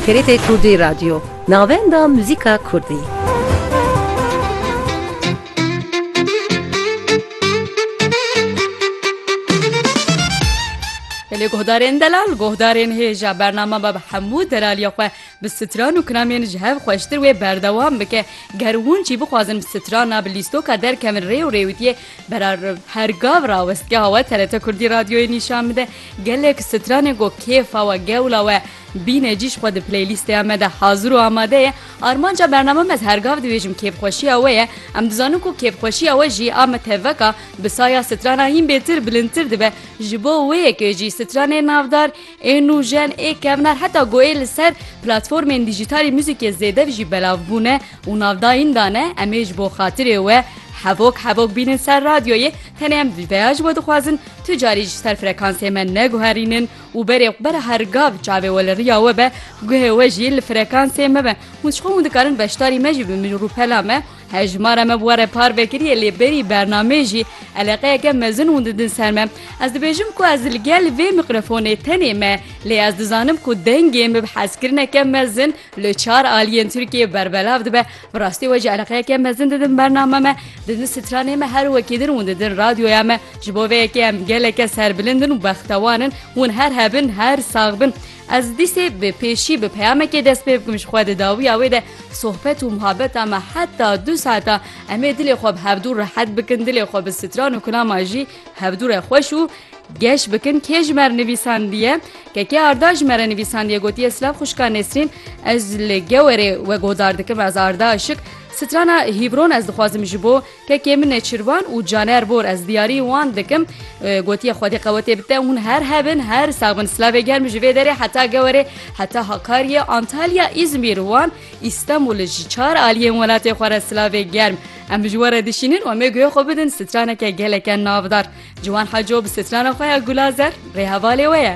TRT Kurdî Radyo, navenda muzîka Kurdî. Lê guhdarên delal guhdarên hêja bername be bi hemû delaliya xwe bi stran û kinamên ji hev xweştir wê berdewam bike ger hûn jî bixwazin bi strana bi lîstoka derkevin rê û rêwitiyê Berarm her gav rawestgeha we TRT Kurdî Radyoyê nîşan bide. Gelek stranên ku kêfa we, gewla we bîne cî ji xwe di playlîsteya me de hazir û amade ye. Armanca bername me ez her gav dibêjim kêfxweşiya we ye. Em dizanin ku kêfxweşiya we jî a me tevek a, bi saya strana hîn bêtir bilindtir dibe. Ji bo wê yekê jî stranên navdar ê nûjen, ê kevnar heta ku ê li ser platformên dîjîtalî muzîkê zêdev jî belav bûne, û navdayîn dane em ê ji bo xatirê we hevok hevok bînin ser radyoyê tenê em vî peya ji we dixwazin tu carî ji ser frekansê me neguherînin û berê xwe bere her gav çavê we li riya we be guhê we jî li frekansê me be hûn ji xwe hûn dikarin beşdarî me jî bibin rûpela me hejmara me bi we re par vekiriye lê berî bernameyê jî eleqeyeke mezin hûn didin ser me ez dibêjim ku ez li gel vê miqrefonê tenê me lê ez dizanim ku dengê me bi hezkirineke mezin Li çar aliyên Tirkiyeyê berbelav dibe. Bi rastî we jî eleqeyeke mezin didin bername me, didin stranê me her wekî din û didin radyoya me. Ji bo vê yekê em geleke serbilind in û bextewan in. Hûn her hebin, her sax bin. Ez dîsê bi pêşî bi peyamekê dest pê bikim ji xwe di dawiya wê de sohbet û muhabeta me heta du saeta em ê dilê xwe bi hevdû rehet bikin, dilê xwe bi stran û kulama jî hevdû re xweş û Geş bikin kê ji mer nivîsandiye? Keke Arda ji mere nivîsandiye gotiye Silav xwişka Nesrîn ez li Gewerê wegodar dikim ez Arda Işik strana Hîbron ez dixwazim ji bo kekê min Nêçirvan û Caner Bor ez diyarî wan dikim gotiye Xwedê qewetê bite hûn her hebin her sax bin Silavê germ ji vê derê heta Gewerê heta Hakariyê Antalya Îzmîr wan Îstembul ji çar aliyên welatê xwe re Silavê germ em ji we re dişînin û em ê guhê xwe bidin straneke geleke navdar. Ciwan Heco bi strana xwe ya Gulazer rêhevalê we ye.